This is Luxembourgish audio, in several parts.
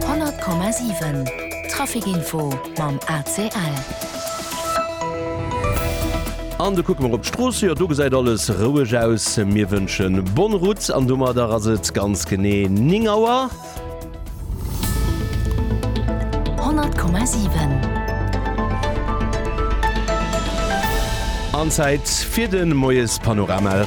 100,7 Trafic Info mam ACL. An du kucke mer op d'Strooss, jo do gesäit alles roueg aus. Mir wënschen bonne route an domadder ass et ganz genee 9 Auer. 100,7 An Zäit fir de Moiespanorama.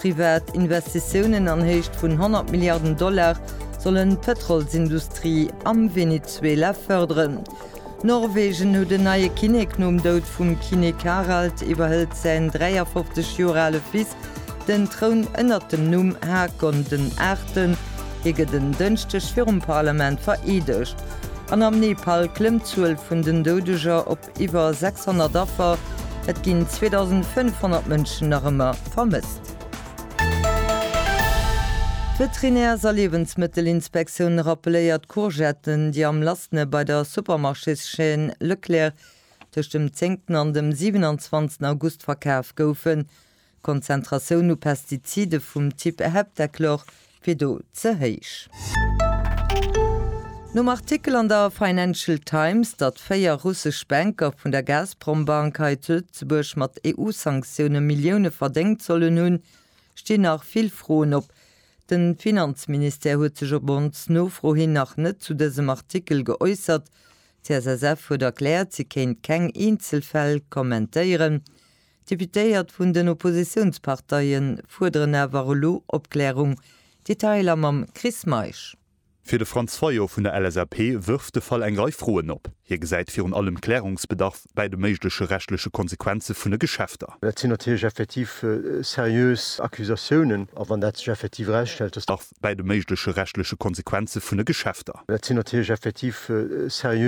Privat Investitiounen an Héicht vun 100 Milliarden Dollar sollen d'Pëtrolsindustrie am Venezuela fërderen. Norwegen huet en neie Kinnek, Nom Doud vum Kinnek Harald iwwerhëlt säin 53 Joer ale Fils den Troun ënnert dem Numm Haakon den Aachten. Hie gëtt en Dënschdeg virum Parlament vereedegt. An am Nepal klëmmt d'Zuel vun den Doudeger op. Iwwer 600 Affer, et ginn 2.500 Mënschen nach ëmmer vermësst. D'Veterinärs a Liewensmëttelinspektioun rappeléiert, Courgetten, déi am lassene bei der Supermarchés-Chaîne Leclerc tëscht dem 10 an dem 27 August verkaf goufen, D'Konzentratioun u Pestizide vum Typ Heptachlor wier do ze héich. Nom Artikel an der Financial Times, datt véier russesch Banker vun der Gazprom-Bank hei zu Lëtzebuerg mat EU-Sanktioune Millioune verdéngt sollen hunn, stinn nach vill Froen op. De Finanzministère huet sech op ons Nofro hin nach net zu dësem Artikel geäussert. D'CSSF huet erkläert, si kéint keng eenzel Fäll kommentéieren. D'Deputéiert vun den Oppositiounsparteie fuerderen awer elo Opklärung. Detailer mam Chris Meisch. Fir de Franz Fayot vun der LSAP wërft de Fall eng Rei Froen op. Hie gesäit virun allem Klärungsbedarf bäi de méigleche rechtleche Konsequenze vun de Geschäfter. Dat sinn natierlech effektiv seriös Accusatiounen. A wann dat sech effektiv erausstellt, datt. Bedarf bäi de méigleche rechtleche Konsequenze vun de Geschäfter. Dat sinn natierlech effektiv seriös.